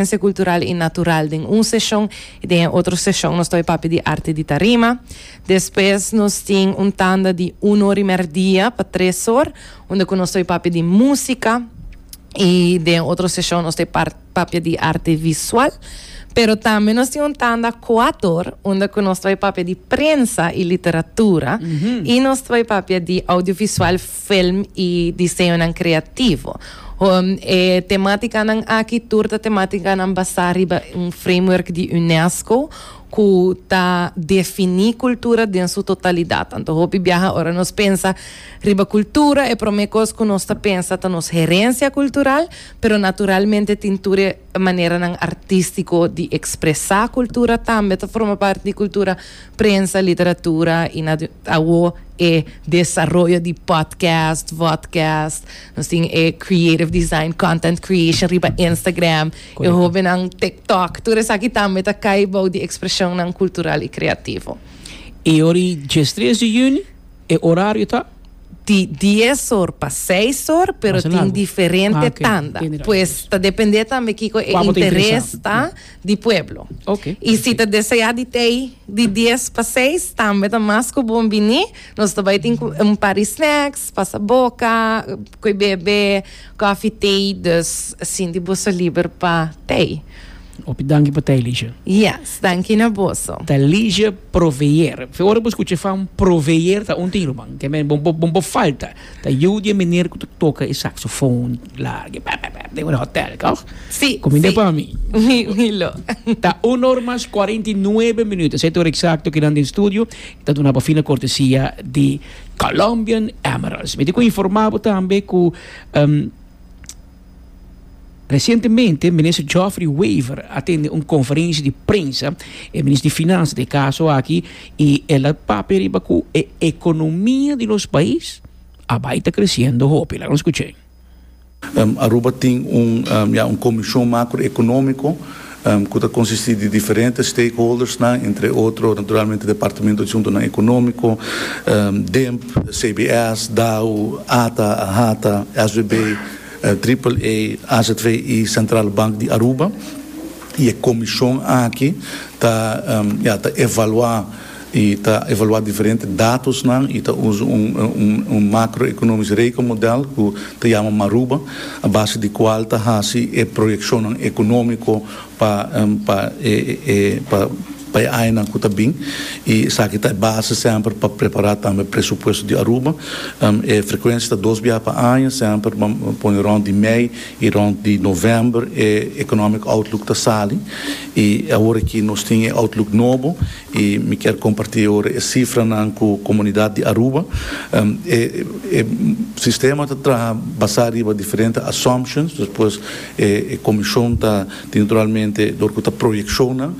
Danse Cultural y Natural den un seshon y den e otro seshon nos ta oye papia di Arte di Tarima. Despues nos tin un tanda di un or y merdia pa tres or unda cu nos ta oye papia di Musica y den otro seshon nos ta oye par papia di Arte Visual. Pero tambe nos tin un tanda cuat or unda cu nos ta oye papia di Prensa y Literatura y nos ta oye papia di Audiovisual. film y diseñonan creativo. E tematicanan aki tur ta tematicanan basá riba un framework di UNESCO cu ta defini cultura den su totalidad. Anto hopi biaha ora nos pensa riba cultura e prome cos cu nos ta pensa ta nos herencia cultural, pero naturalmente tin tur e maneranan artistico di expresa cultura tambe ta forma parti di cultura. prensa, literatura y na awo e desaroyo di podcast, vodcast, nos tin e creative design, content creation riba Instagram, e hobennan TikTok, tur esaki tambe ta cay bou di expresionnan cultural y creativo. Y ora y djes tres di juni e horario ta? Di dies or pa seis or, pero tin diferente tanda, pues ta depende tambe kico e interes ta di pueblo. Okay. Y si ta desea di tei di dies pa seis, tambe ta mas cu bon bini. Nos ta bai tin un par di snacks, pasa boca, coi bebe, coffee, tei. Dus sinti boso liber pa tei. Hopi danki pa tei, Ligia. Yes, danki na boso. Ta Ligia Proveer. Fe ora bo scucha e fam Proveer ta un tin, ruman. Ke men, bon, bon, bon bo falta. Ta yiu di e meneer cu ta toca e saxofoon larg e pep pep den un hotel, toch? Si, si. Cominde pa mi. Mi lo. Ta un or mas cuarenta y nuebe minuut. Esey ta ora exacto cu nan den studio y ta duna pa fina cortesia di Colombian Emeralds. Mi tin cu informa bo tambe cu, um, Resientemente, Minister Geoffrey Wever a tende un conferentie di prensa, e Minister di Finansa ta e caso aki, y el a papia riba cu e economia di nos pais a bay ta creciendo hopi. Laga nos scucha ey. Aruba tin un, ya, un comision macroeconomico. cu ta consisti di diferente stakeholdersnan, entre otro naturalmente Departamento di Asuntonan Economico, DIMP, CBS, DAU, ata, AHATA, SBB, Triple A, AZV y Centrale Bank di Aruba. Y e comision aki ta, ya, ta evalua. I ta evaluá diferente datosnan i ta usa un makroekonomisk rekenmodèl ku ta yama Maruba, a base di kual ta hasi e proyekshonnan ekonómiko pa e añanan ku ta bin. I esaki ta e base sèmper pa prepará tambe presupuesto di Aruba. E frekuensia ta dos biaha pa aña, sèmper bo pone rònt di mei i rònt di novèmber e economic outlook ta sali. I awor aki nos tin e outlook nobo. y mi kier comparti ora e cifranan cu comunidad di Aruba. E sistema ta traha basa riba diferente assumptions, despues e comision ta tin naturalmente dor cu ta proyeccionnan,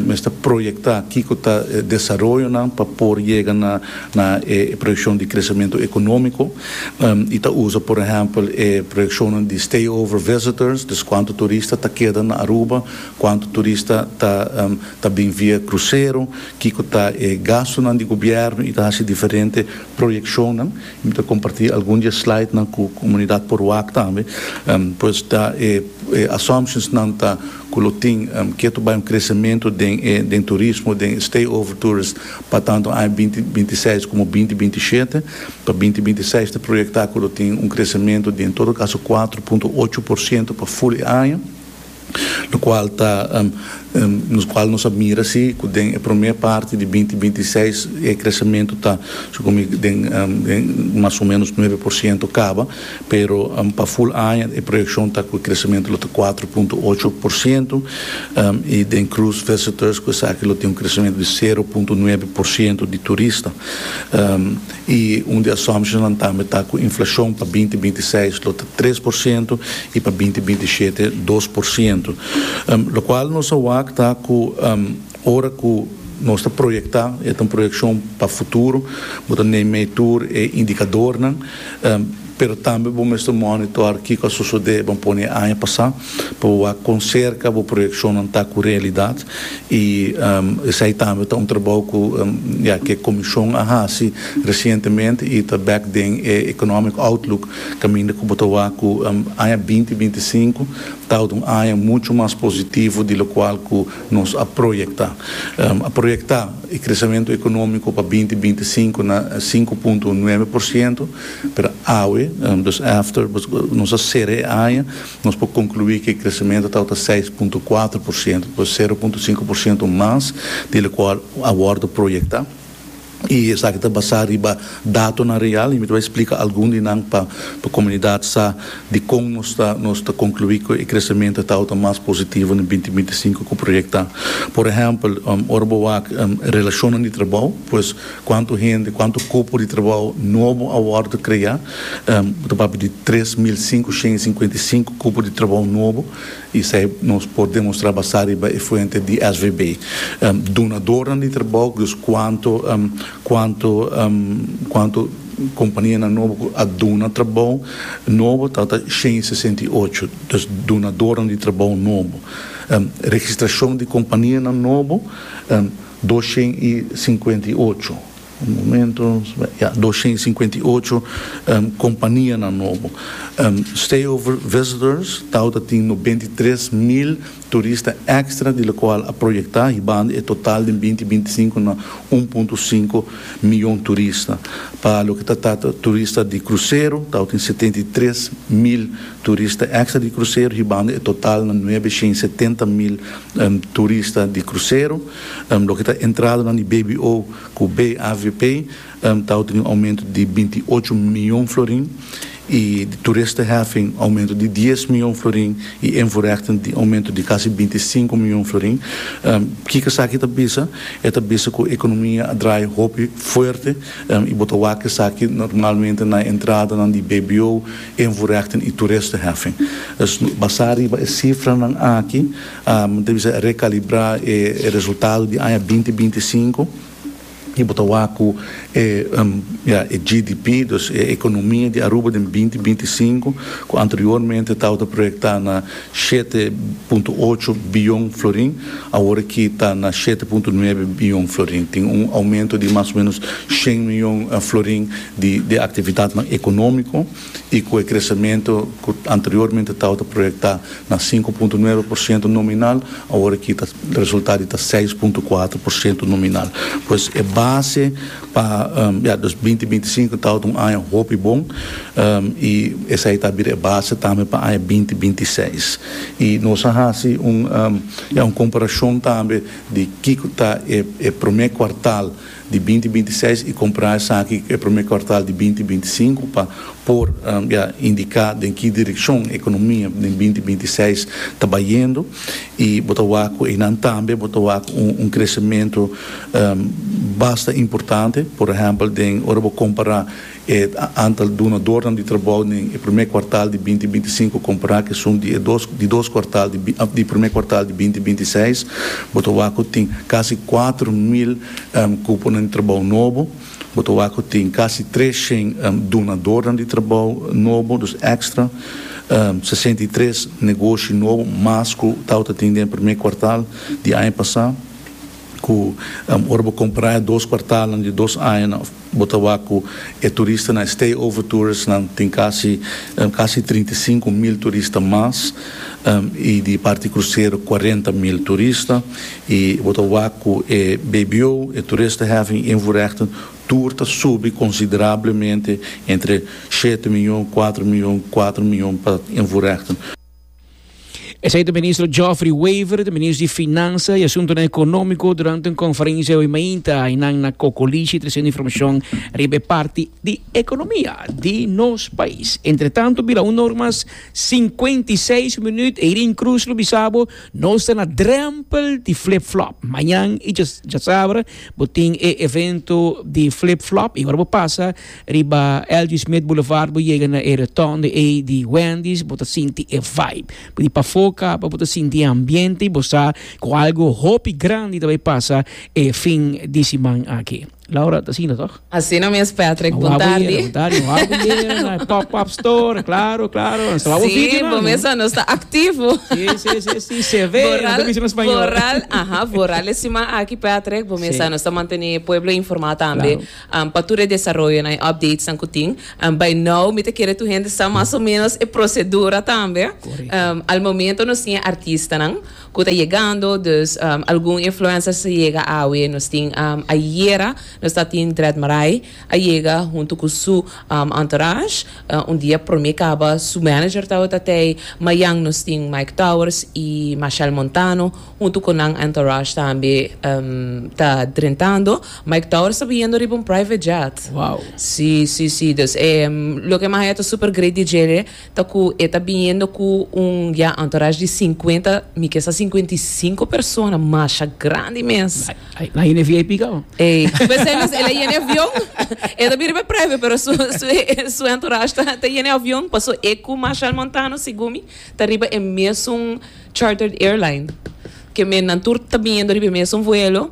mester proyecta kico ta e desaroyonan pa por yega na e proyeccion di crecemento economico, y ta usa por ehempel e proyeccionnan di stay over visitors, dus cuanto turista ta keda na Aruba, Cuantu turista ta ta bin via crucero, kico ta e gastonan di gobierno y ta haci diferente proyeccionnan. Y mi ta comparti algun di e slidenan cu comunidad Poruac tambe. Pues ta e e assumptionsnan ta cu lo tin ke to bai un crecemento den e den turismo, den e stay over tourist pa tanto aña binti binti seis como binti binti shete. Pa binti binti seis ta proyecta cu lo tin un crecemento di en todo caso cuatro punto ocho por ciento pa full e aña. lokual ta lokual nos a mira si ku den e promé parti di binti binti seis e kresementu ta su komo den den mas o menos nuebe por siento kaba pero pa ful aña e proyekshon ta ku e kresementu lo ta kuater punto ocho por siento i den krus visitors ku esaki lo tin un kresementu di sero punto nuebe por siento di turista. y un di assumptionnan tambe ta cu inflacion pa binti binti y seis lo ta tres por ciento y pa binti binti y shete dos por ciento, locual nos a wak ta cu ora cu nos ta proyecta, y e ta un proyeccion pa futuro, bo ta neem mee tur e indicadornan, pero tambe bo mester monitor kico a sosode, bo a pone e aña pasa. pa bo wak kon serka bo proyekshonnan ta ku realidat i esei tambe ta un trabou ku ya ke komishon a hasi resientemente i ta bek den e economic outlook kaminda ku bo ta wak ku aña binti binti sinku ta wòrdu un aña muchu mas positivo di lokual ku nos a proyektá. A proyektá e kresamentu ekonómiko pa binti binti sinku na sinku punto nuebe por siento, pero awe, dus after nos a sera e aña, Nos por conclui cu e crecemento tabata seis punto cuatro por ciento, pues sero punto cinco por ciento mas di locual a wordo proyecta, y esaki ta basa riba datonan real, y mi ta bay splica algun di nan pa pa comunidad sa dicon nos ta nos ta conclui cu e crecemento tabata mas positivo den binti binti sinku cu proyecta. Por ehempel, ora bo wak relacionnan di trabou, pues cuanto hende, cuanto cupo di trabou nobo a wordo crea, Ta papia di tres mil sinku shen i sinkuenta i sinku kupo di trabou nobo i esei nos por demostrá basá riba e fuente di SVB. Dunadornan di trabou, dus kuantu kuantu kuantu kompanianan nobo ku a duna trabou nobo ta ta shen i sesenta i ocho, dus dunadornan di trabou nobo. Registrashon di kompanianan nobo dos shen i sinkuenta i ocho. Un momento ya doshen i sinkuenta i ocho kompanianan nobo. Stayover visitors tawata tin nobenta i tres mil turista èkstra di lokual a proyektá hibando e total den binti binti sinku na un punto sinku miyon turista. Pa loke ta tata turista di krusero tawata tin setenta i tres mil turista èkstra di krusero hibando e total na nuebe shen i setenta mil turista di krusero. Loke ta entradanan di BBO ku BAVP tawata tin un oumento di binti ocho mion florin i di turisteheffing oumento di dies mion florin i invoerhechting tin oumento di kasi binti sinku mion florin. Kiko esaki ta bisa? E ta bisa ku ekonomia a drai hopi fuerte i bo ta wak esaki normalmente na e entradanan di BBO, invoerhechting i turisteheffing. Basá riba e sifranan aki. Bo ta bisa rekalibrá e resultado di aña binti binti i sinku i bo ta wak ku e e GDP, dus e ekonomia di Aruba den binti binti i sinku, ku anteriormente tabata proyektá na shete punto ocho biyon florin, aworakí ta na shete punto nuebe biyon florin. Tin un oumento di mas o ménos shen miyon florin di aktividatnan ekonómiko. y cu e crecemento cu anteriormente tawata proyecta na sinku punto nuebe por ciento nominal awor aki ta resulta di ta seis punto kuater por ciento nominal. Pues e base pa ya dos binti binti sinku tawata un aña hopi bon y esai ta bira e base tambe pa aña binti binti seis y nos a haci un ya un comparacion tambe di kico ta e e prome kuartal di binti binti seis y compra esaki e primer cuartal di binti binti sinku pa por ya indica den ki direccion economia den binti binti seis ta bayendo y bo ta wak cu eynan tambe bo ta wak un crecemento basta importante por ehempel den ora bo compara E antal dunadornan di trabou den e promé kuartal di binti binti sinku kompará ku esun di e dos di dos kuartal di di promé kuartal di binti binti seis, bo ta wak ku tin kasi kuater mil kuponan di trabou nobo. Bo ta wak ku tin kasi tres shen dunadornan di trabou nobo, dus èkstra, sesenta i tres negoshi nobo mas ku tawata tin den e promé kuartal di aña pasá. Cu ora bo compara e dos cuartalnan di dos añanan bo ta wak cu e turistanan, e stay over touristnan tin casi casi trinta i sinku mil turista mas y di parti crucero cuarenta mil turista y bo ta wak cu e bbo, e toeristenheffing invoerrechten tur ta subi considerablemente entre shete miyon, cuatro miyon, cuatro miyon pa invoerrechten. Esei ta ministro Geoffrey Wever, ta ministro di Finansa i Asuntonan Ekonómiko durante un konferensia hoy mainta ainan na Kokolishi tresendo informashon riba e parti di ekonomia di nos pais. Entretantu, bila un nor mas sinkuenta i seis minuut, Eirin Cruz lo bisa bo nos ta na drempel di flip flop. Mañan i djasabra bo tin e evento di flip flop i ora bo pasa Riba L.G. Smith Boulevard bo yega na e rotonde ei di Wendy's bo ta sinti e vibe. Bo di pafó kaba bo ta sinti e ambiente i bo sa ku algu hopi grandi ta bai pasa e fin di siman aki. Laura, ta asina tòg? Asina mes Patrick, Nan bon wak bo yera, tardi. bon tardi. Nan wak bo yera na e pop-up store, claro, claro. Nan saba bo Si, video nan, bo no? mester nos ta activo. Si, si, si, si, se ve, nan Vooral, ta bisa na spañol. vooral, aha, vooral e siman aki Patrick, bo mester Sí. nos ta mantene e pueblo informa tambe. Claro. Pa tur e desaroyonan, e updatesnan ku tin, bai nou mi ta kere tur hende sa mas o menos e prosedura tambe. Al momento nos tin e artistanan ku ta yegando, dus algun influencers ta yega awe. Nos tin ayera nos ta tin Dread Marai a yega huntu ku su entourage. Un dia prome kaba su manager ta awe ta tei. Mayan nos tin Mike Towers i Mashel Montano. huntu cu nan entourage tambe ta drentando. Mike Tower sta biendo riba un private jet. Wow. Si, si, si. Dus loke mas e ta super great di djere ta cu e ta biendo cu un, ya, entourage di cincuenta, mi ke sa cincuenta y cinco persona. Masha grandi mes. Ay, nan yena e VIP cabo. Ey, pesey mes el a yena e avion. E ta bin riba e private pero su, su, su entourage ta, ta yena e avion. Paso e cu Machel Montano, segun mi, ta riba e mesun. Chartered Airline, ke mennan tur ta biniendo riba e mesun vuelo.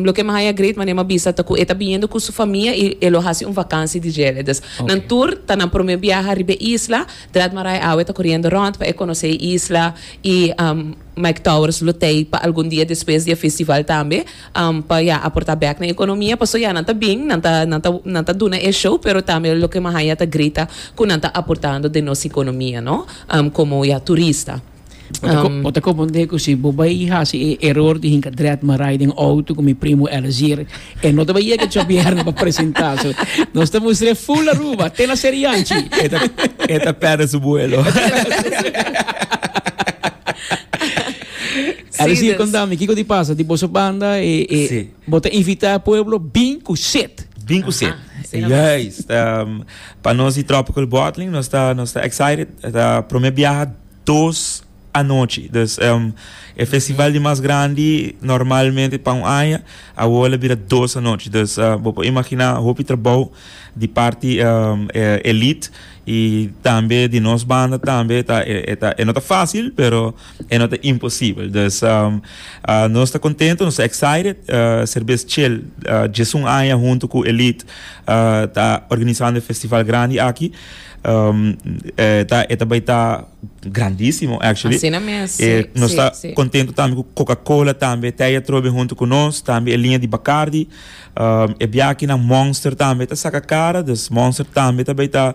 Loke mi haya great manera mi a bisa ta ku e ta biniendo ku su famia i e lo hasi un vakansi di djele. Dus nan tur ta nan promé biaha riba e isla. Draad Marais awe ta koriendo rònt pa e konosé e isla i Mike Towers lo tei pa algun dia despues di e festival tambe. pa ya aporta bek na economia paso ya nan ta bin nan ta nan ta nan ta duna e show pero tambe loke mi a haya ta grita cu nan ta aportando den nos economia no como ya turista. Bo ta comprende cu si bo bay haci e error di hinca dret marai den auto cu mi primo Elezir e no ta bay yega Chobierne pa presenta so nos ta mustra e full Aruba te na Serianchi. E ta e ta perde su vuelo. A ver si conta mi kico di pasa di boso banda e bo ta invita pueblo bin cu set. Bin cu set. Juist. Pa nos di Tropical Bottling nos ta nos ta excited. Ta prome biaha dos anochi. Dus e festival di mas grandi normalmente pa un aña awor lo bira dos anochi. Dus bo por imagina hopi trabou di parti Elite y tambe di nos banda tambe ta e no ta facil pero E no ta imposibel. Dus nos ta kontento, nos ta excited ser bes chel djesun aña huntu ku Elite ta organisando e festival grandi aki. E ta bai ta grandisimo actually. Asina mes, si, E nos si, ta si. kontento tambe ku Coca-Cola tambe ta ei atrobe huntu ku nos, tambe e liña di Bacardi. E biakinan Monster tambe ta saka kara, dus Monster tambe ta bai ta.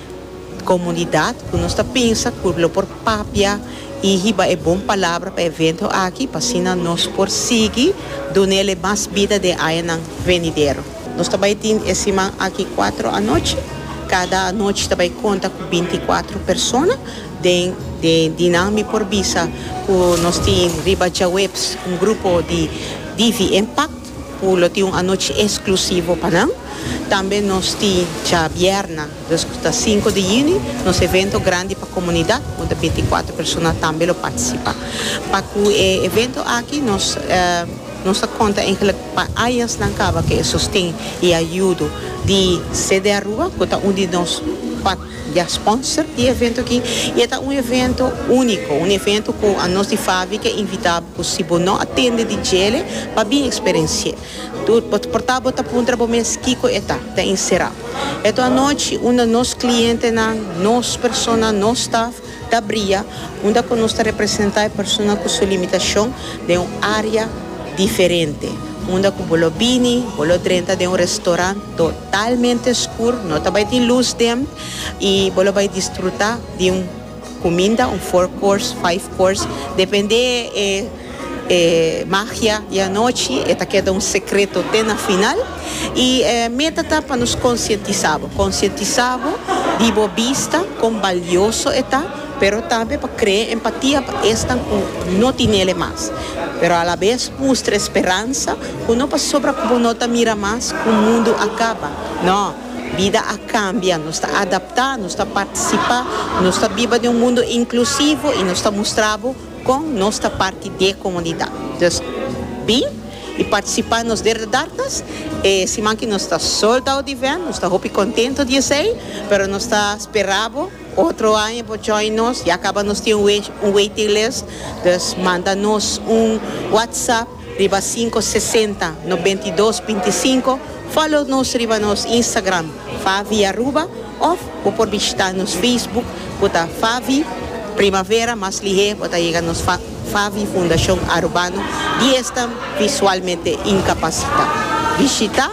Comunidad cu nos ta pensa cu lo por papia y hiba e bon palabra pa e evento aki pa asina nos por sigui dunele mas bida den añanan venidero. Nos ta bay tin e siman aki cuatro anochi. Cada anochi ta bay conta cu binti y cuatro persona. Den e di nan mi por bisa cu nos tin riba djaweps un grupo di Divi Impact. Cu lo tin un anochi exclusivo pa nan. Tambe nos tin djabièrna, dus cu ta sinku di juni, nos evento grandi pa comunidad, unda binticuatro persona tambe lo participa. Pa cu e evento aki nos nos ta conta eigenlijk pa añasnan caba cu e sosten y ayudo di. CDAruba, cu ta un di nos. Dia sponsor di e evento aki. I e ta un evento úniko, un evento ku anos di Favi ke invitá bo ku si bo no a tende di djele pa bin eksperensi'é. Tur bo ta portá bo ta puntra bo mes kiko e ta, ta inserá. Eto anochi unda nos klientenan, nos persona, nos staf, Ta bria unda cu nos ta representa e persona cu su limitacion den un area diferente, unda cu bo lo bini, bo lo drenta den un restaurant totalmente scur, no ta bay tin luz den, y bo lo bay disfruta di un cuminda, un four course, five course, depende e. E magia di anochi e ta keda un sekreto te na final. I e meta ta pa nos konsientisá bo, konsientisá bo di bo bista kon balioso e ta, pero tambe pa krea empatia pa esnan ku no tinel e mas. Pero alabes mustra e speransa ku no pasobra ku bo no ta mira mas ku mundu a kaba, no, bida a kambia, nos ta adaptá, nos ta partisipá, nos ta biba den un mundu inklusivo i nos ta mustra bo Con nos ta parti d'e comunidad. Dus bin y participa nos Derde Darkness e siman ki nos ta sold out di event, nos ta hopi contento di esey, pero nos ta spera bo otro aña bo join nos, ya caba nos tin un waiting list, dus manda nos un WhatsApp. Riba sinko sesenta nobenta i dos binti i sinko, follow nos riba nos Instagram Favi Aruba of bo por bishita nos Facebook ku ta Favi Primavera mas lihé bo ta yega nos Favi Fundashon Arubano di esnan Visualmente Inkapasitá. Bishita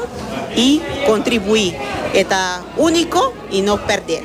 i kontribuí e ta úniko i no pèrdel.